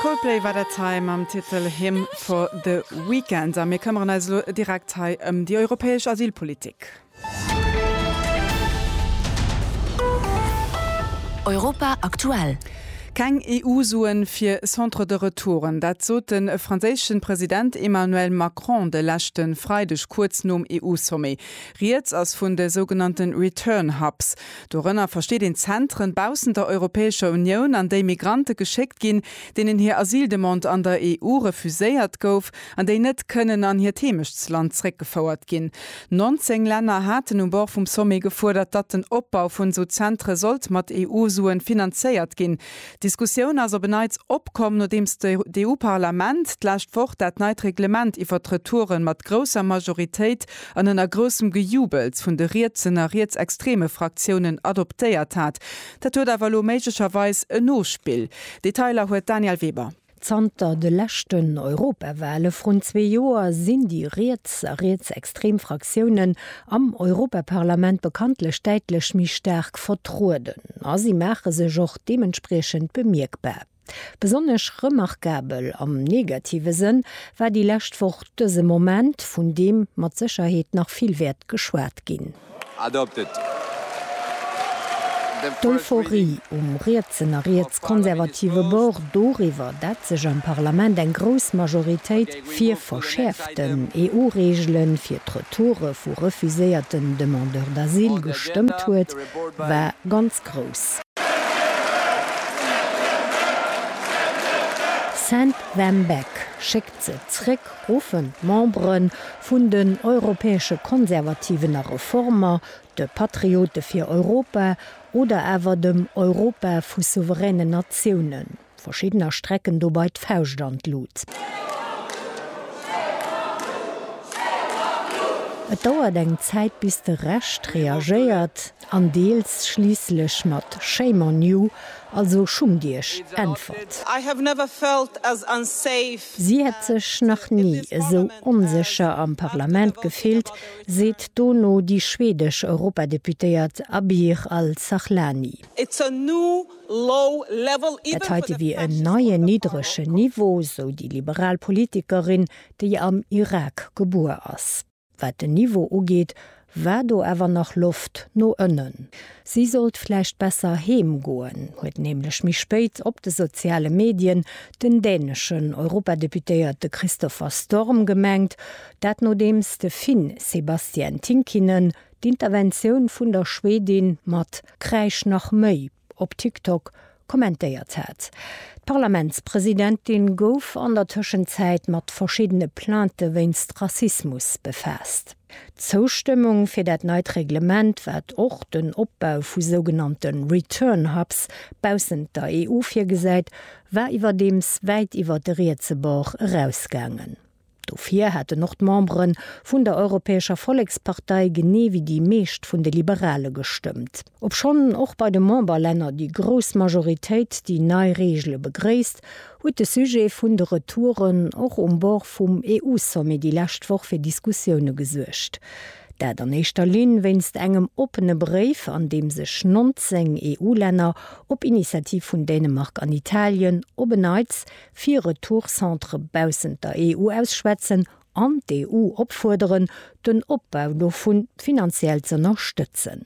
Coldplay war dat hei mam Titel Hymn for the Weekend. A mir këmmeren eis elo direkt hei ëm déi europäesch Asylpolitik. Europa aktuell. Keng EU-Suen fir Centres de retouren, dat sot de franséische President Emmanuel Macron de leschte Freideg kuerz nom EU-Sommet. Rieds ass vun de sougenannte Return Hubs. Dorënner versteet een Zentren baussent der Europäescher Unioun, an déi Migrante geschéckt ginn, deenen hir Asyldemande an der EU refuséiert gouf an déi net kënnen an hiert Heemechtsland zréckgefouert ginn. 19 Länner haten um Bord vum Sommet gefuerdert, datt den Opbau vun esou Zentre sollt mat EU-Suen finanzéiert ginn. D'Diskussioun ass op en Neits opkomm, nodeems d'EU-Parlament d'lescht Woch dat neit Reglement iwwert d'Retouren mat grousser Majoritéit an ënner groussem Gejubels vun de rietsen a rietsextreme Fraktiounen adoptéiert hat. Dat huet awer elo méiglecherweis en Nospill. Detailer huet d'Danièle Weber. Zanter de leschten Europawale vrun zwee Joer sinn déi riets a rietsextrem Fraktiounen am Europaparlament bekanntlech däitlech méi staark vertrueden a si maache sech och deementspriechend bemierkbar. Besonnesch remarkabel, am negative Sënn, war déi lescht Woch dëse Moment, vun deem mat Sécherheet nach vill wäert geschwat ginn. D'Euphorie um rietsen a rietskonservative Bord doriwwer, dat sech am Parlament eng grouss Majoritéit fir verschäerften EU-Reegele fir d'Retoure vu refuséierten Demandeurs d'asile gestëmmt huet, war ganz grouss. Send them back, schéck Ze zréck ruffen d'Membere vun den Europäesche Konservativen a Reformer, de Patriote fir Europa oder awer dem Europa vu souveränen Natiounen. Verschiddener strecken dobei d'Fauscht an d'Lut. Et dauert eng Zäit bis de Rescht reagéiert. an deels schliisslech mat Shame on you, also schummt iech, äntwert. Si hätt sech nach ni esou onsécher am Parlament gefillt, seet dono déi schwedesch Europadeputéiert Abir Al-Sahlani. Dat heite wier en neien niddregen Niveau, sou déi liberal Politikerin, déi am Irak gebuer ass. Wat den Niveau ugeet, war do awer nach Loft no ënnen. Si sollt vläicht besser heem goen, huet nämlech méi spéit op de soziale Medien den däneschen Europadeputéierte Christopher Storm gemengt. Dat nodeems de Finn Sebastian Tynkkynen d'Interventioun vun der Schwedin mat Kräisch nach méi! op TikTok kommentéiert hat. D'Parlamentspresidentin gouf an der Tëschenzäit mat verschiddene Plainte wéinst Rassismus befaasst. D'Zoustëmmung fir dat neit Reglement, wat och den Opbau vu sougenannte Return Hubs baussent der EU virgesäit, war iwwerdeems wäit iwwer de rietse Bord erausgaangen. Dofir hätten och d'Membere vun der Europäescher Vollekspartei, genee wéi déi meescht vun de Liberale gestëmmt. Obschonn och bei de Memberlänner déi grouss Majoritéit déi nei Reegele begréisst, huet de Sujet vun de Retouren och um Bord vum EU-Sommet déi lescht Woch fir Diskussioune gesuergt. Dat an éischter Linn wéinst engem oppene Bréif, an deem sech 19 EU-Länner, op Initiativ vun Dänemark an Italien, op en Neits fir Retourcentre baussent der EU ausschwätzen an d'EU opfuerderen, den Opbau dovu finanziell z'ënnerstëtzen.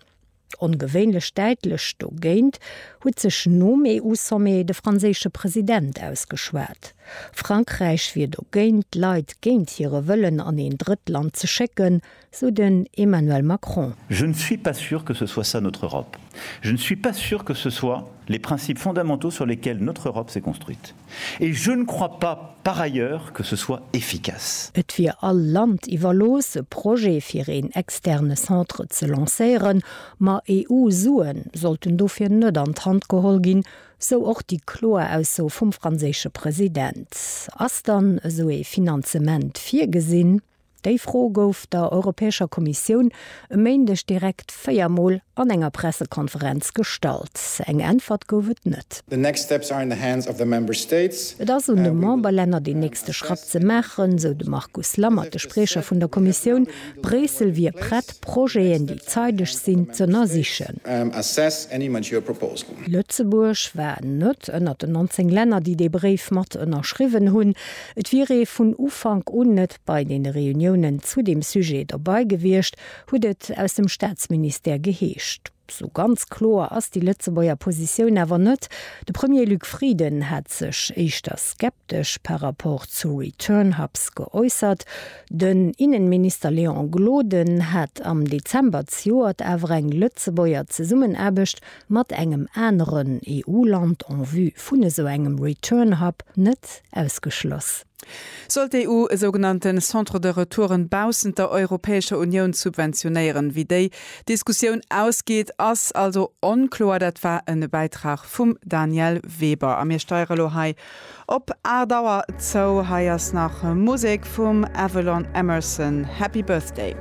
Ongewéinlech däitlech dogéint huet sech nom EU-Sommet de franséische President ausgeschwat. Frankräich wier dogéint, Leit géint hire Wëllen an een Drëttland ze schécken. sou den Emmanuel Macron. Je ne suis pas sûr que ce soit ça notre Europe. Je ne suis pas sûr que ce soit les principes fondamentaux sur lesquels notre Europe s'est construite. Et je ne crois pas, par ailleurs, que ce soit efficace. Et wier all Land iwwerlooss, e Projet fir een externe Centre ze lancéieren, ma EU-Sue sollten dofir net an d'Hand geholl ginn, sou och déi kloer Ausso vum franséische President. Ass dann esou ee Finanzement virgesinn? Déi Fro gouf der Europäescher Kommissioun e Méindeg direkt véier Mol an enger Pressekonferenz gestallt. Eng Äntwert gouf et net. Et ass un de Memberlänner deen nächste Schratt ze maachen, sou de Markus Lammert, de Spriecher vun der Kommissioun. Bréissel wier prett, Projeten, déi zeideg sinn, z'ënnersichen. Lëtzebuerg war net ënnert den 19 Länner, déi dee Bréif mat ënnerschriwwen hunn. Et wier ee vun Ufank un net bei deene Reuniounen zu deem Sujet dobei gewiescht, huet et aus dem Staatsministère geheescht. Sou ganz kloer ass déi Lëtzebuerger Positioun awer net. De Premier Luc Frieden hat sech éischter skeptesch par rapport zu Return Hubs geäussert. Den Innenminister Léon Gloden hat am Dezember zejoert awer eng Lëtzebuerger Zesummenaarbecht mat engem aneren EU-Land en vue vun esou engem Return Hub net ausgeschloss. Sollt d'EU e sougenannte Centre de retouren baussent der Europäescher Unioun subventionéieren? Wéi déi Diskussioun ausgeet, ass also onkloer. Dat war e Bäitrag vum Danièle Weber. A mir steiere lo hei op 8 Auer zou. Hei ass nach Musek vum Avalon Emerson, Happy Birthday.